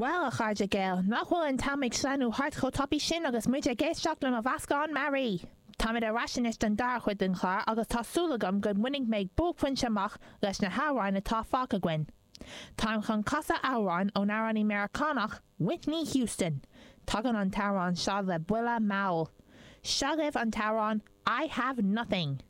Bhuel, a chairde Gael, nach bhfuil an t-am ag sleamhnú thart chomh tapaidh sin agus muid ag éisteacht le mo mheascán mearaí! Táimid ar ais anois don dara chuid den chlár agus tá súil agam go mbainfidh mé buaicphointe amach leis na hamhráin atá fágtha againn. Táim chun casadh amhrán ón amhránaí Meiriceánach Whitney Houston. Tagann an t-amhrán seo le buille mall. Seo agaibh an t-amhrán I Have Nothing!